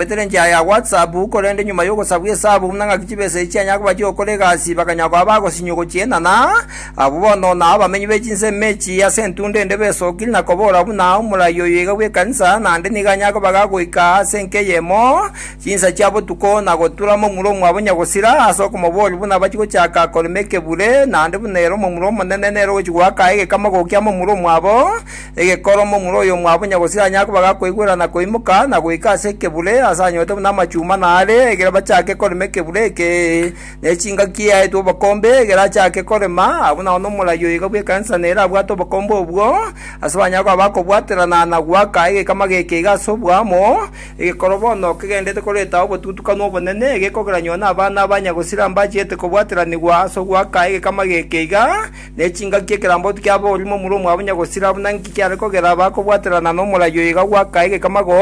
Bagoetera enchera ya WhatsApp, korende nyuma y'ogosabwa esabu buna ng'aki chibesa echi chianyare koba chi'ogokora egasi, bakanyara koba abagosinyiwa gochienana. Abwo bono nao abamenyi be chinsemo echi ase entunda ende besokire na kobora buna omorai oyo iga bw'ekanisa, naende nigo anyare koba iga goika ase enka eyemo chinsa chia botuko na gotura momura omwabo onye gosira ase okomoboria buna bachie gochaka korema ekebure, naende buna ere omomura omonene nere ogochia goaka egekama gokia momura omwabo. Egekoro momura oyomwabo onye gose anyare koba gakoigwera na koimoka na goika ase ekebure, ase anyorete buna amachuma naare, ekero bachake korema ekebure eke, ne chingaki eaetwe obokombe, ekero achake korema, abwo nao nomorai oiga bw'ekanisa nere abwate obokombe obwo, ase banyare koba bakobwaterana na goaka egekama geke iga ase oboamo, egekoro bono kegendererete koreta obotutukanu obonene, egekogera nyoo nabana abanya gosira mbachiete kobwateranigwa ase ogoaka egekama geke iga, Ne chingaki ekeramboti kiaboorima omura omwabo onye gosira, buna inki kiare kogera bakobwaterana nomoraio iga gwaka egekama go?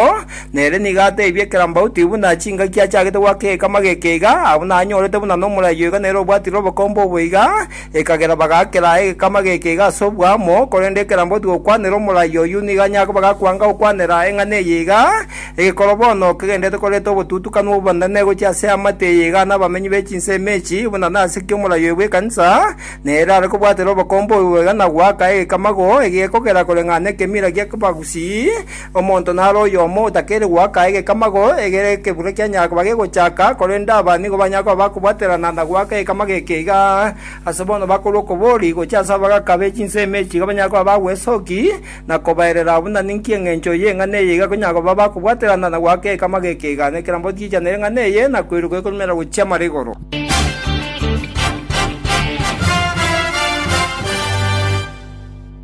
Nere nigo ateebie ekerambauti, buna chingaki achagete gwaka egekama geke iga, abuna anyorete buna nomoraio iga nere obwatire obokombe obo iga, ekagera bagakera egekama geke iga ase obwamo, korende ekeramboti gokwanera omoraio oyio nigo anyare koba gakwanga gokwanera eng'ana eye iga, Egekoro bono kegenderete koreta obotutukanu obonene gochia ase eamate eye iga nabamenyi be chinsemo echi, buna nase ki omoraio oyo bw'ekanisa, na ere are kobwatera obokombe obobe iga na goaka egekamago egekogera koreng'ana ekemira gi'abagusii, omonto nare oyomo otakeire goaka egekamago egere ekebura kianyara koba gegochaka, korende aba nigo banyare koba bakobwaterana na goaka egekamago eke iga, ase bono bakorwa okobori gochia ase abagaka be chinsemo echi iga banyare koba bagwesoki, na kobaerera abwo na ninki engencho y'eng'ana eye iga konya koba bakobwaterana na goaka ekama gekegano ekerambe gotigenchanera eng'ana eye na koiroka ekorumera gochia mare igoro.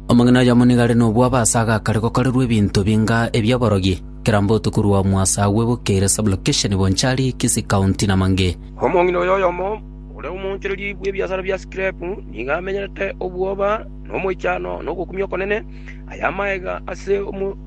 Omong'ina oyomo nigo are nobwabo ase agakare gokorerwa ebinto binga ebi'oborogi, ekerambe otuko rwamwa ase agwo ebukeire sub-location Bonchari, Kisii County na Mange. Omong'ina oyo oyomo, ore omoonchoreria bw'ebiasara bia scrap, nigo amenyerete obwoba, nomoichano na ogokumia okonene, aye amaega ase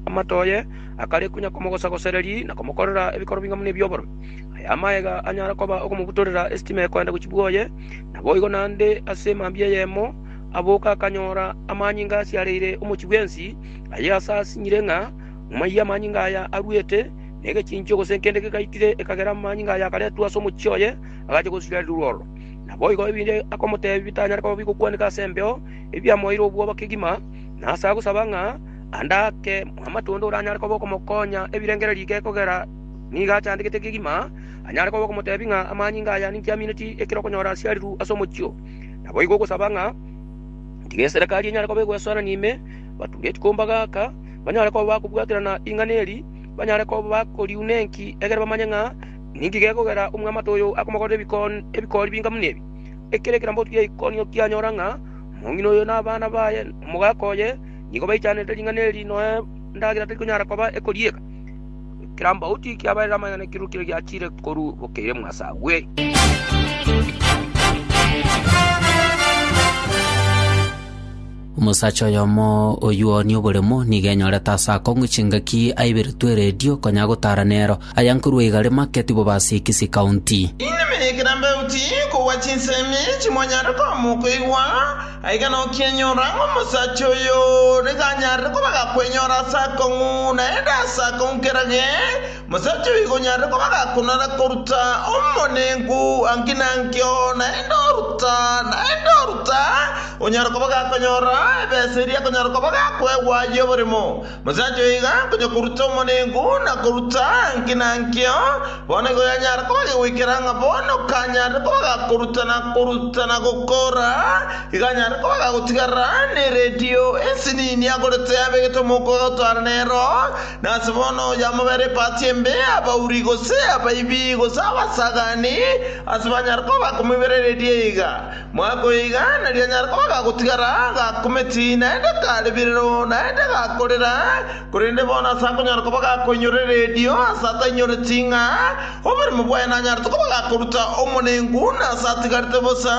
amato aye, akare konya komogosa-gosereri na komokorera ebikoro bing'e buna ebi'oboromi. Aye amaega anyare koba okomobutorera esitima ekoenda gochia bwoye, naboigo naende ase mambia eyemo aboka akanyora amanyinga asiareire omochie bwensi, aye ase asinyire ng'a maiyo amanyinga aya aruete, na egechinchio gose nkende kegaitire ekagera amanyinga aya akaretwa ase omochie oye, agachia gosirerirwa ororo. Naboigo ebinto akomoteebia bitanyare koba bigokwaneka ase embeo, ebi biamoeire obwoba kegima, na ase agosaba ng'a ande ake amatunda oranyare koba okomokonya ebirengererio ige kogera nigo achandegete kegima, anyare koba okomoteebia ng'a amanyinga aya ninki amineti ekero okonyora asiariru ase omochie oo. Naboigo ogosaba ng'a tiga eserekari enyare koba egoesorania ime, bature chikomba gaka, banyare koba bakobwaterana ring'ana eri, banyare koba bakoriuna enki, egere bamanye ng'a Ninki gekogera omwamate oyo akomokorera ebikori binga buna ebi? Ekero ekerambe otugire geikonio kianyora ng'a omong'ina oyo na abana baye na omogaka oye nigo baichanerete ring'ana eri, noe endagera tari konyara koba ekorieka. Ekerambe oti kiabaeire amang'ana ekeruru keria giachire korua bokeire mwase agwe. Omosacha oyomo oyio nioboremo nigo enyorete aase akong'u chingaki aiberetwe eredio konya gotara nero. Aya nkorwa igare make tibo base Kisii County. Inwe mekera mbeuti kogwa chinsemi chimonyare koama okoigwa, aiga nokienyora ng'a omosacha oyo nigo anyarire koba gakwenyora aase akong'u, naende aase akong'u kerage. Mosacha oyo igonyarire koba gakonora koruta omonenku anki nankio, naende oruta, naende oruta, onyare koba gakonyora ebesa eria akonyara koba gakoegwa y'oboremo. Mosacha oyo iga akonya koruta omonenku na koruta anki nankio, bono igo yanyara koba gegoikera ng'a bono kanyarire koba gakoruta na koruta na gokora, iga anyare koba gagotigarera neredio ensinini agorete abegete omouko agotwara nero, Nase bono oyamobera epaati embe, abauri, gose abaibi, gose abasagani, ase banyare koba bakomoiberereria iga, mwakoe iga, nari anyare koba gagotigara gakumeti, naende kare birero, naende gakorera, korende bono ase akonyara koba gakoinyorera erio, ase atainyoreti ng'a oborimo bwaye nanyarete koba gakoruta omonengu, na ase atigarete bosa,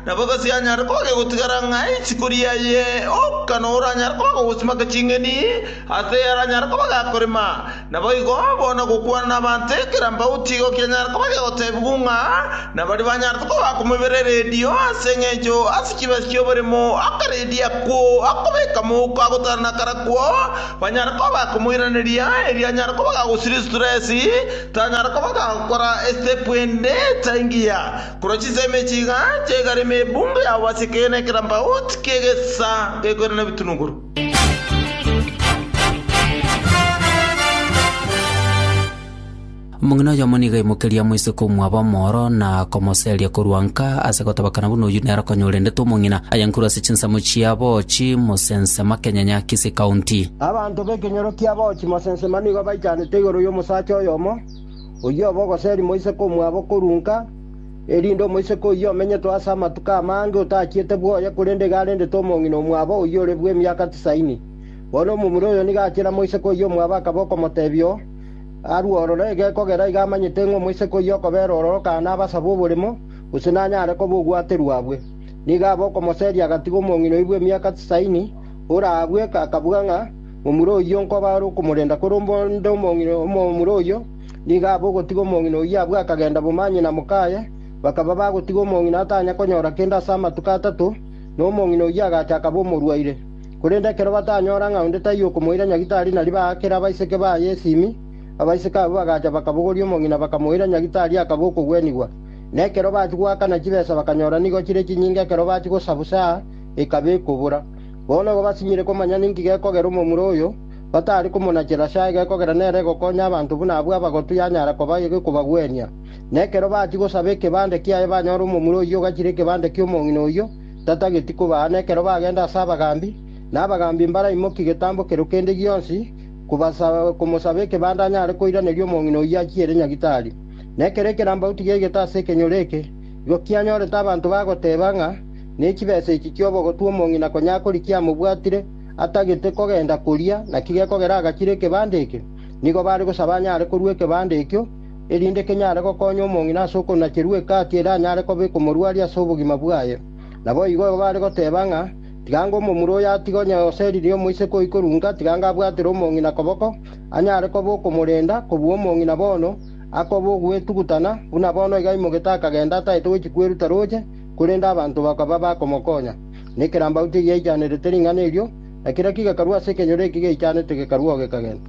nabo gose anyare koba gegotigara ng'a isiko riaye, oka, na oranyare koba gogosimaka ching'eni, Ase yaranyare koba gakorema, naboigo bono gokwana nabanto ekera mbao tigo kianyare koba gegotebigwa ng'a nabaria banyarete koba komobera eredio ase engencho ase chibesa chi'oboremo akaredio akwo akobeka mouko agotara nakarakwo banyare koba bakomoiraneria erio anyare koba gagosiria stress tanyare koba gagokora estep ende taingiya korwa chinsemo echi iga chiaigare ime ebungo yabo ase ekeene ekera mbao tikiegesa gekoirana ebitunuguru. Omong'ina oyomo nigo aimokerie amoise komwaba omoro na komoseria korwa nka ase gotabakana buna oyio nere okonyorendete omong'ina, aye nkuru ase chinsemo chia Boochi, Mosensema, Kenyanya, Kisii County. Abanto b'ekenyoro kia Boochi, Mosensema nigo baichanete igoro y'omosacha oyomo, oyio obe ogoseri moise komwabo korwa nka erinde omoiseke oyio omenyetwe ase amatuko amange otachiete bwoye, korende iga arendete omong'ina omwabo oyio ore bw'emiaka tisaini. Bono omomura oyo nigo achiera moiseke oyio omwabo akaba okomotebia oo, Arue ororo egekogera, iga amanyete ng'a omoiseke oyio okobera ororokana nabasabe oborimo, gose nanyare koba ogwaterwa abwe. Nigo abe okomoseria agatiga omong'ina oyio bw'emiaka tisaini, ore abwe akabuga ng'a momura oyio nkoba are okomorenda, korende omong'ina omomura oyio Nigo aba ogotiga omong'ina oyio abwo akagenda bomanyene na mokaye, bakaba bagotiga omong'ina atanya konyora kende ase amatuko atato, na omong'ina oyio agacha akaba omorwaire. Korende ekero batanyora ng'a onde taiyo okomoira nyagitari nario baakera abaiseke baye esimi, abaiseke abwo bagacha bakabogoria omong'ina bakamoira nyagitari akaba okogwenigwa. Na ekero bachia goakana chibesa bakanyora nigo chire chinyinga ekero bachia gosabusa ekaba ekobora. Bono igo basinyire komanya ninki gekogera omomura oyo, Batari komonachera chaage, kogera nere gokonya abanto buna abwo abagotu yanyara koba kobagwenia. Na ekero bachia gosaba ekebande kiaye banyora omomura oyio ogachire ekebande ki'omong'ina oyio, tatageti kobaa. Na ekero bagenda ase abagaambi, na abagaambi mbaraimokia getambo kerio kende gionsi komosaba ekebande anyare koiraneria omong'ina oyio achiere nyagitari. Na ekero ekerambauti giaigete ase ekenyoro eke, igo kianyorete abanto bagoteeba ng'a nechibesa echi chi'obogotu omong'ina konya akorikia amobwatire, atagete kogenda koria, naki gekogera agachire ekebanda ekio. Nigo bare gosaba anyare korua ekebanda ekio, erinde kenyare gokonya omong'ina ase okonacherwa egati ere anyare kobeka omorwari ase obogima bwaye. Naboigo bare goteba ng'a, Tigango omomura oyo atige onye oseririe omoiseke oyi korunga, tigango abwatire omong'ina koboko, anyare koba okomorenda, kobua omong'ina bono akoba ogwetugutana, buna bono iga aimogete akagenda ataete gochia kweruta roche, korende abanto bakaba bakomokonya. Na ekerambaute egiaichanerete ring'ana erio, na kera kigakarwa ase ekenyoro eki geichanete gekarwa oo gekagenda.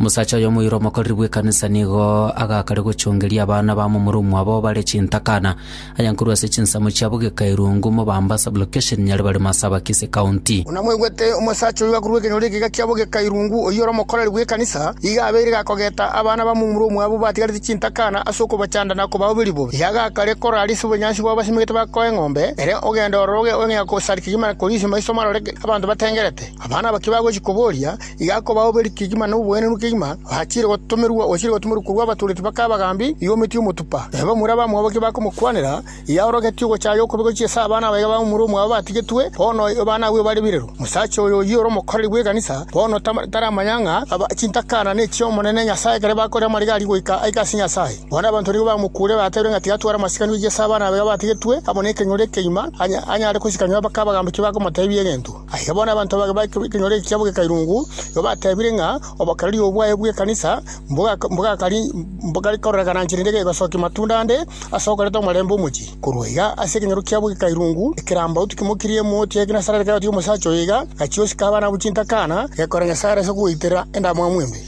Omosacha oyo omoyuro omokoreri bw'ekanisa nigo agakare gochongeria abana ba momura omwabo bare chintakana, aya nkorwa ase chinsemo chiabo Gekairungu, Mobamba Sub-location, Nyaribari Masaba, Kisii County. Buna mwaigwete, omosacha oyo akorwa ekenyoro eke gachia bo Gekairungu, oyio ore omokoreri bw'ekanisa. kogeta, iga abeire gakogeta abana ba momura omwabu batigarete chintakana ase okobachanda na kobao biribu. Iga gakare koraria ase obonyansi bw'abasimegete ba koa eng'ombe, ere ogenda ororo oge gosari kegima na korisia maiso marore abanto batengerete. Abana aba kibagochia koboria, iga akobao beri kegima na oboenenu kegima, bachiire gotomerwa, ochire gotomerwa korwa abatoreti bakae abagambi, iga ometie omotupa. Nabo bamura abamwabo ki bakomokwanera, Yaorogetie ogochaaya okobe gochia ase abana abaiga ba momura omwabo batigetwe, bono abana abwo bare birero. Omosacha oyo oyio ore omokoreri bw'ekanisa, bono taramanya ng'a chintakana nechiomonene Nyasae ekero bakorire amariga aria goika aike ase Nyasae. Bono abanto nigo bamokuure batebirie ng'a tigatware amasikani gochia ase abana abaiga batigetwe, amo nekenyoro ekeima, anyare kosika nyomba kabagambiki bakomotebia egento. Aye bono abanto abake b'ekenyoro ekiabo g'ekeirungu nigo batebire ng'a obokereri obo bwaye bw'ekanisa mbogare kororeka nanche rende gegosokia matunda ande ase okoreta omorembe omochie. Korwa iga ase ekenyoro kiabo g'ekeirungu ekerambaotu kimokirie emoti ya Genesarete gakagotia omosacha oyo iga, gachia gosika abana abwo chintakana, gekora Nyasae ase kogoitera endamwamu embe.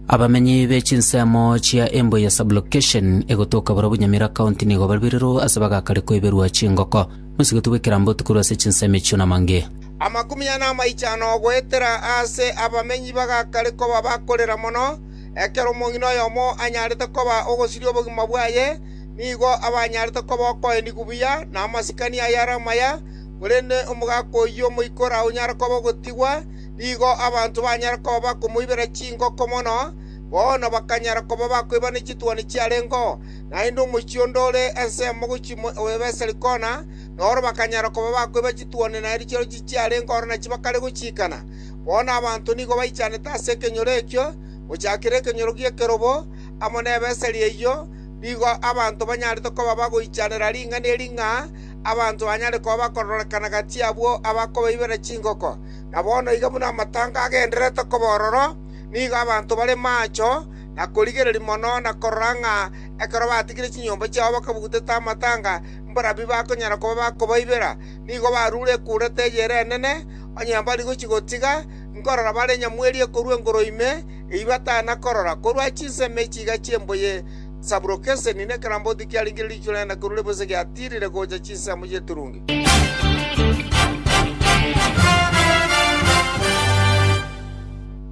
Abamenyi be chinsemo chia Embu eye Sub-location egotoka borobwo Nyamira County nigo barwirerwe ase bagakare koiberwa chingoko. Mosigoti bw'ekerambe otikorwe ase chinsemo echio namange. Amakumi ane amaiche ano goetera aase abamenyi bagakare koba bakorera mono, ekero omong'ina oyomo anyarete koba ogosiria obogima bwaye, nigo abanyarete koba okoendi kubuya na amasikani ayare amaya, korende omogaka oyio moikore aonyare koba ogotigwa, nigo abanto banyare koba bakomoibera chingoko mono, bono bakanyara koba bakoibania chituoni chiarengeo, naende omochie onde ore ensemo gochia Beseri kona, na oro bakanyara koba bakoiba chituoni na erio chirochio chiarenge oro nachio bakare gochiikana. Bono abanto nigo baichanete ase ekenyoro ekio, gochakera ekenyoro gi'ekerobo, amo ne Beseri eyio, nigo abanto banyarete koba bagoichanera ring'ana eri ng'a abanto banyare koba bakororekana gati abwo abakobaibera chingoko. na bono iga buna amatanga agendererete koba ororo, nigo abanto bare maacho na korigereria mono na korora ng'a ekero batigire chinyomba chiabo bakabugutete amatanga mbarabwo bakonyara koba bakobaibera. Nigo barure ekuurete eyere enene, onye mbari gochia gotiga nkorora bare nyamwerie korwa engoro ime, eyio batana korora korwa chinsemo echi iga chi'embuya. Sabulokeseni, na ekeramboti kiarigirie riichwe rende korwa ribosa giatiirire gocha chinsemo chi'eturungi.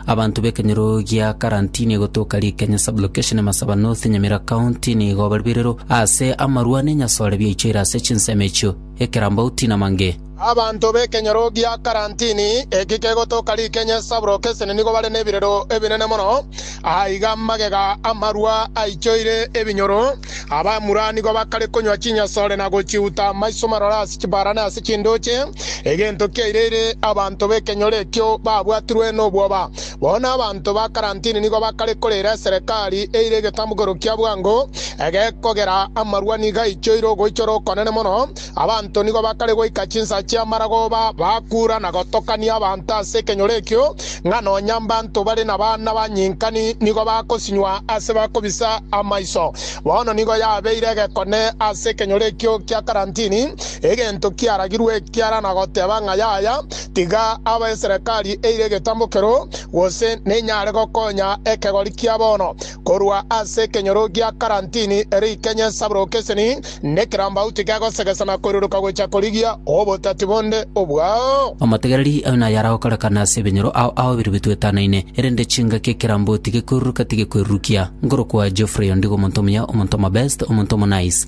Abanto b'ekenyoro gia Karantini egotoka rikenya Sublocation Masaba North Nyamira County nigo barwirero ase amarwa nenyasore biaichoire ase chinsemo echio, ekerambauti na mange. Abanto b'ekenyoro gia karantini eki kegotoka rikenya esaboroka esene nigo bare nebirero ebinene mono. Aa iga magega amarwa aichoire ebinyoro. Abamura nigo bakare konywa chinyasore na gochiuta amaiso marore ase chibara na ase chinduche. Egento kiaireire abanto b'ekenyoro ekio babwatirwe nobwoba. Bono abanto ba karantini nigo bakare koreera eserekari eire egetambukero kia bwango egekogera amarwa nigo aichoire ogoichora okonene mono. Abanto nigo bakare goika chinsa chi'amarago ba bakuura na gotokania abanto ase ekenyoro ekio, ng'a nonya mbanto bare nabana banyinkani nigo bakosinywa ase bakobisa amaiso. Bono nigo yabeire egekone ase ekenyoro ekio kia karantini, egento kiaragirwe ekiara na goteba ng'a yaya, tiga aba eserekari eire egetambo kero, gose nenyare gokonya ekegori kia bono. Korwa ase ekenyoro gia karantini ere ikenye sabrokeseni nekerambauti kegosegesa na koiruruka gocha korigia obotati bonde obwao. Omotegereri aye naye aragokorekana ase ebenyoro ao ao bire bitwetanaine, erende chingaki ekeramboti gekoiruruka tigekoirurukia. Nkorokwa Geoffrey ondigo omonto omuya, omonto omobest, omonto omonice.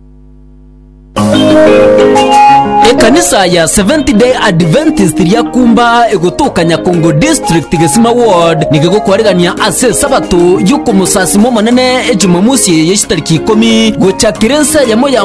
Ekanisa ya Seventh Day Adventist ria Kumba egotoka Nyakongo District Gesima Ward nigo egokwarerania ase esabato y'okomosasima Omonene Ejumamosi eye y'echitariki ikomi gochakera ense eyemo ya